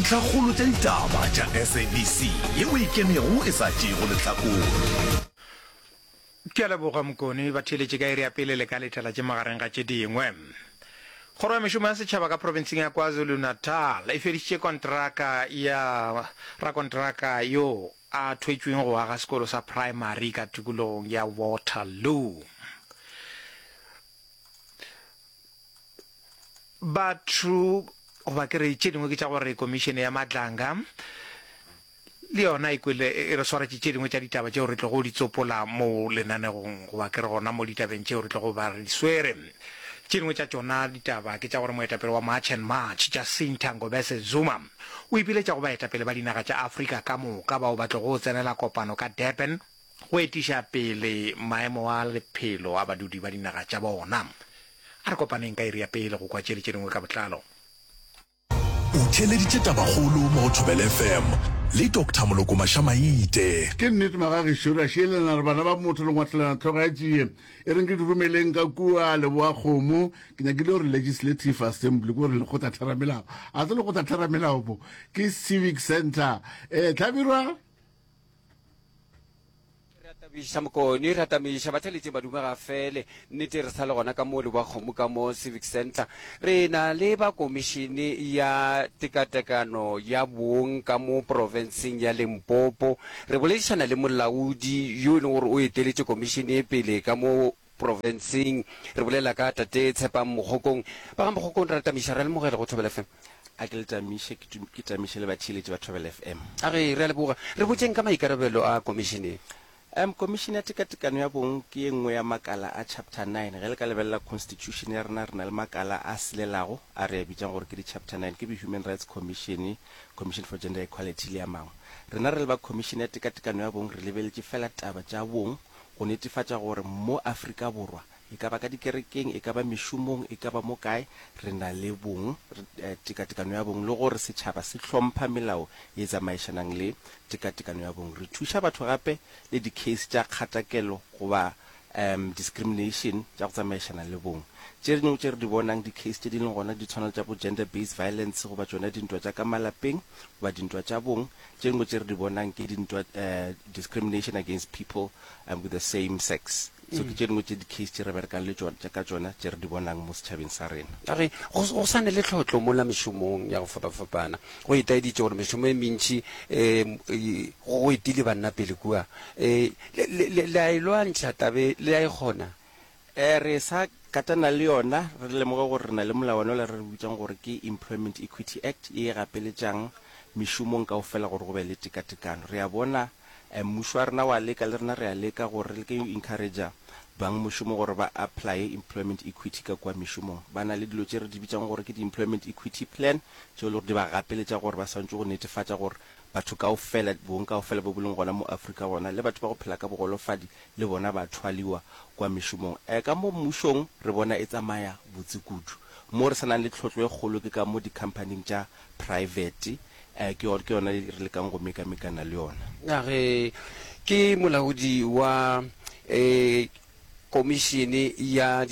Ntlhakgolo tša ditaba tša SABC ye o e kenego e sa tšeego lehlakore. Ke a leboga Mokone. Batheeletše ka iri ya pele le ka letela tše magareng ga tše dingwe. Kgoro ya Mešomo ya Setšhaba ka profenseng ya KwaZulu-Natal e fedišitše kontraka ya rakontraka yo a thwetšweng go aga sekolo sa praemari ka tikologong ya Waterloo. Batho goba ke re tše dingwe ke tša gore komišene ya Madlanga le yona e kwele e re swaretše tše dingwe tša ditaba tšeo re tlogo di tsopola mo lenanegong goba ke re gona mo ditabeng tšeo re tlogo ba re di swere. Tše dingwe tša tšona ditaba ke tša gore moetapele wa March and March Jacinta Ngobese Zuma o ipiletša go baetapele ba dinaga tša Afrika ka moka bao ba tlogo tsenela kopano ka Durban go etiša pele maemo a lephelo a badudi ba dinaga tša bona. A re kopaneng ka iri ya pele go kwa tšeli tše dingwe ka botlalo. O theeleditše Tabakgolo mo go Thobela FM le Doctor Moloko Maša-Maite. Ke nnete maga gešo re a šielelana re bana ba motho le ngwatlelana tlhogo ya tšie e reng ke di rumeleng ka kua leboa kgomo ke nyakile gore legislative assembly ke gore lekgotla theramelao a se lekgotla theramelao bo ke civic centre eh tlhabirwa re atabiša mokoni re atamiša batlhaletseng badume ga fele nnete re sa le gona ka mo le ba kgomo ka mo civic center re na le ba komišene ya tekatekano ya bong ka mo porofenseng ya lempopo re boledišana le molaodi yo e leng gore o eteletše komišene pele ka mo Profenseng. Re bolela ka Tate Tshepang Mogokong. Ba ga Mogokong ra le tamiša, re a lemogela go Thobela FM. A ke le tamiše, ke tu, ke tamiše le batheeletši ba Thobela FM. A re, re a leboga. Re botšeng ka maikarabelo a Komišene ye. Um, Komišene ya Tekatekano ya Bong ke ye nngwe ya makala a Chapter Nine. Ge le ka lebelela Constitution ya rena, re na le makala a silelago a re a bitšang gore ke di-Chapter Nine, ke bo-Human Rights Commission, Commission for Gender Equality le a mangwe. Rena re le ba Komišene ya Tekatekano ya Bong re lebeletše feela taba tša bong, go netefatša gore mo Afrika Borwa, e ka ba ka dikerekeng, e ka ba mešomong, e ka ba mo kae, re na le bong, tekatekano ya bong, le gore setšhaba se hlompha melao ye e tsamaišanang le tekatekano ya bong. Re thuša batho gape le di-case tša kgatakelo goba discrimination tša go tsamaišana le bong. Tše dingwe tše re di bonang, di-case tše di leng gona, di tshwana le tša bo gender-based violence goba tšona dintwa tša ka malapeng goba dintwa tša bong, Tše dingwe tše re di bonang ke dintwa, discrimination against people with the same sex. So ke tše dingwe tše di-case tše re berekang le tšona, ka tšona tše re di bonang mo setšhabeng sa rena. A re go sa ne le tlhohlo mola mešomong ya go fapafapana. Go itaeditše gore mešomo e mentši e go etile banna pele kua. Le a e lwantšha taba e? Le a e kgona? E re sa katana le yona, re lemoge gore re na le molawana ola re re bitsang gore ke Employment Equity Act ye e gapeletšang mešomong kaofela gore go be le tekatekano. Re a bona mmušo wa rena wa leka, le rena re a leka gore re leke go encourager bang mošomo gore ba apply-e Employment Equity ka kua mešomong. Ba na le dilo tše re di bitsang gore ke di Employment Equity Plan tšeo e le gore di ba gapeletša gore ba swantše go netefatša gore batho kaofela, bong kaofela bo bo leng gona mo Afrika gona le batho ba go phela ka bogolofadi, le bona ba thwaliwa kwa mešomong eh, ka mo mmušong re bona e tsamaya botse kudu. Mo re sa nang le tlhotlo e kgolo ke ka mo dikhamphaning tša praefete eh, ke yona re lekang go mekamekana le yona. A re ke molaodi wa eh, Komišene ya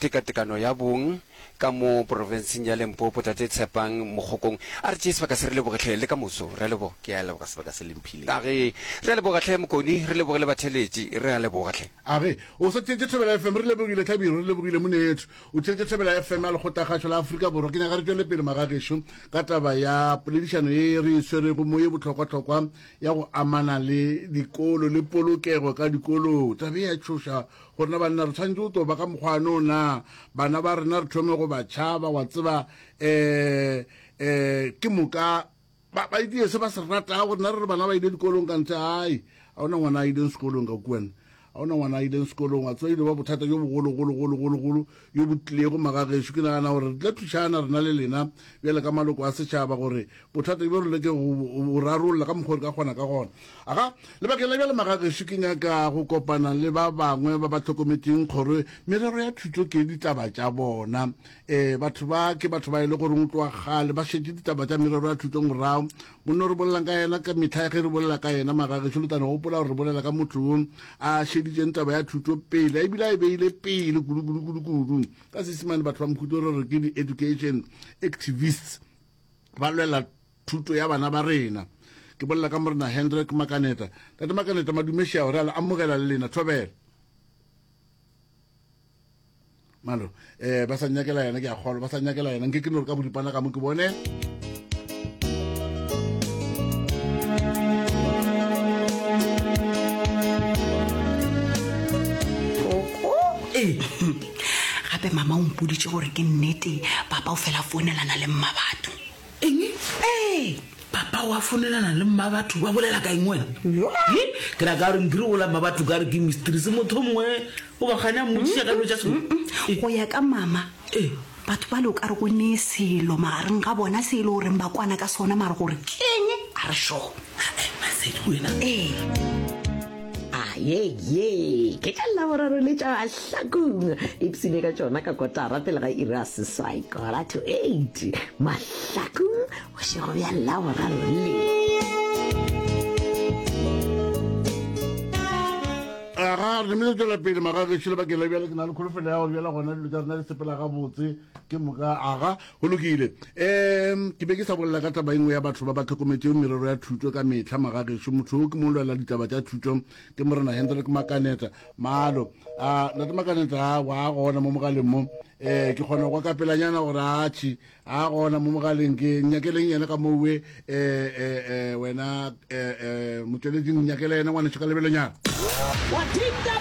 tekatekano ya bong ka mo porofenseng ya Lempopo, Tate Tshepang Mogokong a re tšee sebaka se. Re leboge hle le ka moso. Re a leboga. Ke a leboga sebaka se le mphileng. Age, Re a leboga hle Mokoni, re leboge le batheletši. Re a leboga hle. Age, O sa tšeetše Thobela FM. Re lebogile Tlhabiro, re lebogile Moneethu. O tšeetše Thobela FM ya Lekgothakgašo la Afrika Borwa. Ke nyaka re tšwele pele magagešo ka taba ya poledišano ye re e swerego mo ye bohlokwahlokwa ya go amana le dikolo le polokego ka dikolong. Taba ye ya tšhoša Go rena banna re tshwanetse go toba ka mokgwa wa no na bana ba rena re thome go ba tšhaba wa tseba um um ke moka ba ba itie se ba se rata go rena re re bana ba ile dikolong ka ntle ai a ona ngwana a ileng sekolong ka kuana a ona ngwana a ileng sekolong wa tseba ile ba bothata jo bogologologologologolo yo bo tlilego magagešo, ke nagana gore re tla thušana rena le lena bjale ka maloko a setšhaba gore bothata bjo re leke go bo rarolla ka mokgwa re ka kgona ka gona. Aga, lebakeng la bjale magagešo ke nyaka go kopana le ba bangwe ba ba hlokometšeng kgoro merero ya thuto ke ditaba tša bona. E, batho ba ke batho ba e le goreng go tloga kgale ba šetše ditaba tša merero ya thuto morago, Monna o re bolelang ka yena ka mehla ge re bolela ka yena magagešo, le tla no gopola gore re bolela ka motho yo a šeditšeng taba ya thuto pele, a ebile a e beile pele kudu-kudu-kudu-kudu. Ka Seesimane batho ba Mokhuto re re ke di-education activists, ba lwela thuto ya bana ba rena. Ke bolela ka Morena Hendrik Makaneta. Tate Makaneta, Madumešia o re a le amogela le lena. Thobela. malo eh ba sa nyakela yena ke a kgolwa ba sa nyakela yena nke ke no re ka boripana ka mo ke bone gape mama o mpoditse gore ke nnete papa o fela founelana le mma batho Eng? Ee, papa wa fonelana le mmabatho ba bolela ka eng wena? He, ke ra ka gore nkiri ola mmabatho ka re ke mistress motho o mongwe o ba gane a mmotsiša ka dilo tša selo. Eh, go ya ka mama Eh. batho ba le o ka re go nee selo magareng ga bona se e le goreng ba kwana ka sona mare gore keng a re sure. Masedi wena. Ee. a ye ye ke tla laboraro le tša hlakong ipsine ka tšona ka kotara pele ga iri a seswai kora to eight mahlakong bošego bja laboraro le aga re mele tswela pele magagešo le bakeng la bjale ke na le kholofelo ya gore bjala gona dilo tša rena di sepela gabotse ke moka aga Go lokile. Um, ke be ke sa bolela ka taba engwe ya batho ba ba tlhokometšego merero ya thuto ka mehla magagešo. Motho yo ke mo lwela ditaba tša thuto ke Morena Hendrik Makaneta. Malo. A, Nate Makaneta, a, wa gona mo mogaleng mo. Eh, ke kgona kwa kapelanyana gore atšhi. A gona mo mogaleng ke nyakeleng yena ka moo we. Eh, eh, eh, wena, eh, eh, motšweleding nyakela yena ngwanešo ka lebelonyana. What did the